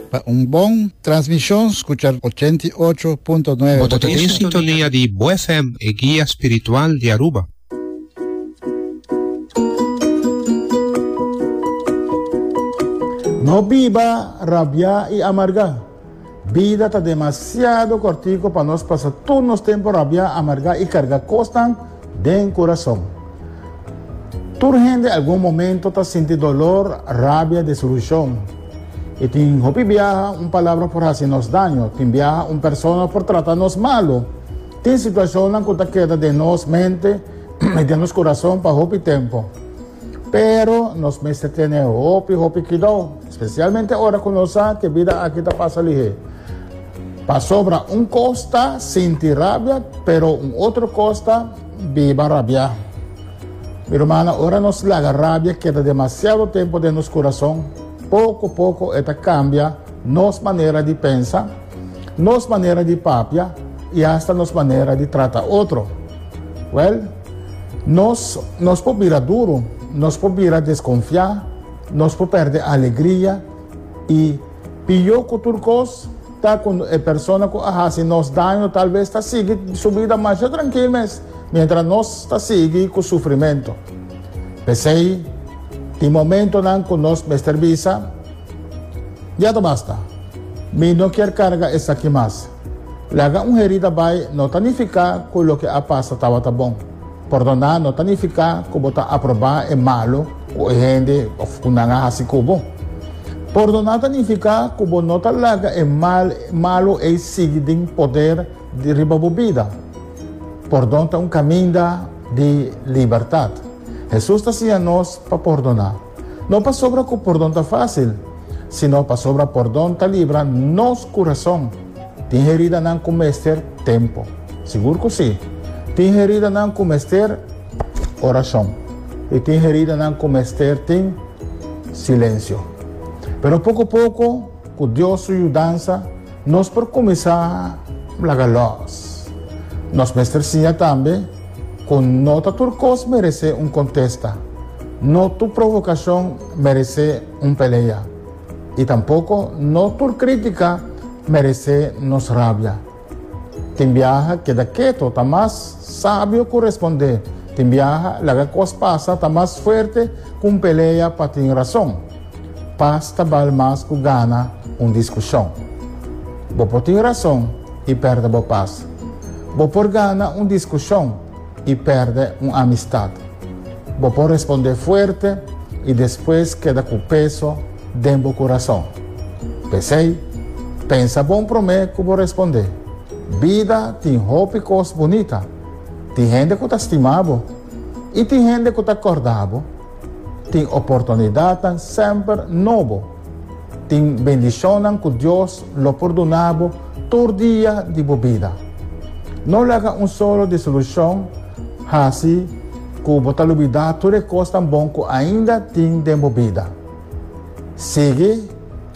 Pa un bon transmishon skucha ochenta i ocho punto nuebe. Bo ta tin sintonia di Bo FM, e guia spiritual di Aruba. No biba rabiá i amargá. Bida ta demasiado cortico pa nos pasa tur nos tempo rabia, amarga y carga cosnan den curason. Tur hende algun momento ta sinti dolor, rabia, desilusion. Y tin hopi biaha un palabra por haci nos daño, tin biaha un persona por trata nos malo. Tin situacionnan cu ta keda den nos mente y den nos curason pa hopi tempo. Pero nos mester tene hopi hopi cuidao. Spesialmente ora ku nos sa ku e bida aki ta pasa lihé. Pasobra un kos ta sinti rabia, pero un otro kos ta biba rabiá. Mi rumannan, ora nos laga rabia keda demasiado tempu den nos kurason, poko poko e ta kambia nos manera di pensa, nos manera di papia i asta nos manera di trata otro. Wèl, nos nos por bira duru, nos por bira deskonfiá, Nos por pèrdè alegria i pió ku tur kos ta ku e persona ku a hasi nos daño talves ta sigui su bida masha trankil mes miéntras nos ta sigui ku sufrimentu. P'esei tin momentunan ku nos mester bisa, Ya ta basta! Mi no kier karga esaki mas. Laga un herida bai no ta nifiká ku loke a pasa tabata bon. Pòrdoná no ta nifiká ku bo ta aprobá e malu ku e hende òf ku nan a hasi ku bo. Pòrdoná ta nifiká ku bo no ta laga e mal malu ei sigui den poder di riba bo bida. Pòrdon ta un kaminda di libertat. Hesus ta siña nos pa pòrdoná. No pasobra ku pordon ta fásil, sino pasobra pordon ta libra nos kurason. Tin heridanan ku mester tempu? Sigur ku sí. Tin heridanan ku mester orashon, i tin heridanan ku mester tin silensio. Pero poko poko, ku Dios su yudansa, Nos por kuminsá laga lòs. Nos mester siña tambe ku no ta tur kos meresé un kontesta, no tur provokashon meresé un pelea i tampoko no tur krítika meresé nos rabia. Tin biaha keda keto ta mas sabio ku respondé, tin biaha laga kos pasa ta mas fuerte ku un pelea pa tin rason. Pas ta bal mas ku gana un diskushon. Bo por tin rason i pèrdè bo pas. Bo por gana un diskushon i pèrdè un amistat. Bo por respondé fuerte i despues keda ku peso den bo kurason. P'esei, pensa bon promé ku bo respondé. Bida tin hopi kos bunita. Tin hende ku ta stima bo i tin hende ku ta kòrda bo. Tin oportunidadnan semper nobo. Tin bendishonnan ku Dios lo por duna bo tur dia di bo bida. No laga un solo disolushon hasi ku bo ta lubidá tur e kosnan bon ku ainda tin den bo bida. Sigui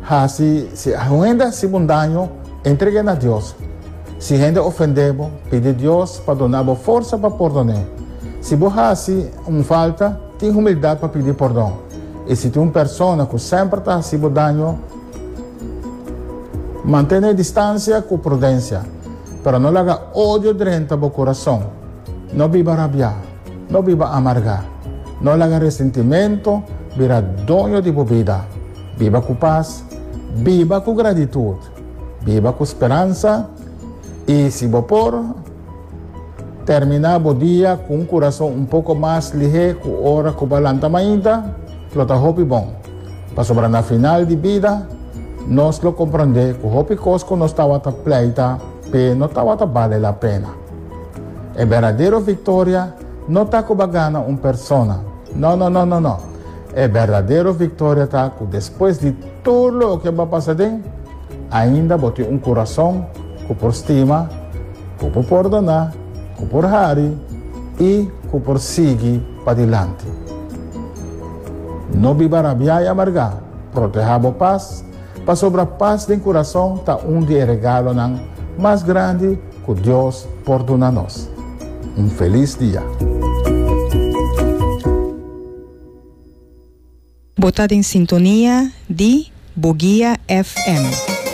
hasi si hende hasi bo un daño, entreg'é na Dios. Si hende ofendé bo, pidi Dios pa duna bo forsa pa pordon'é. Si bo hasi un falta, tin humildat pa pidi pordon. I si tin un persona ku semper ta hasi bo daño, mantené distansia ku prudensia. Pero no laga odio drenta bo kurason. No biba rabiá. No biba amargá. No laga resentimento bira doño di bo bida. Biba ku pas, biba ku gratitut, biba ku speransa i si bo por, terminá bo dia ku un kurason un poko mas lihé ku ora ku bo a lanta mainta, lo ta hopi bon. Pasobra na final di bida, nos lo komprondé ku hopi kos ku nos tabata pleita p'e no tabata bale la pena. E berdadero victoria no ta cu ba gana un persona, no, no, no, no, no. E berdadero victoria ta cu despues di tur loke bo a pasa den, ainda bo tin un curason cu por stima, cu por pordona, cu por hari y cu por sigui padilanti. No biba rabia y amarga, proteha bo paz, pasobra paz den curason ta un di e regalonan mas grandi Ku Dios por duna nos un felis dia. Bo ta den sintonia di Bo Guia FM.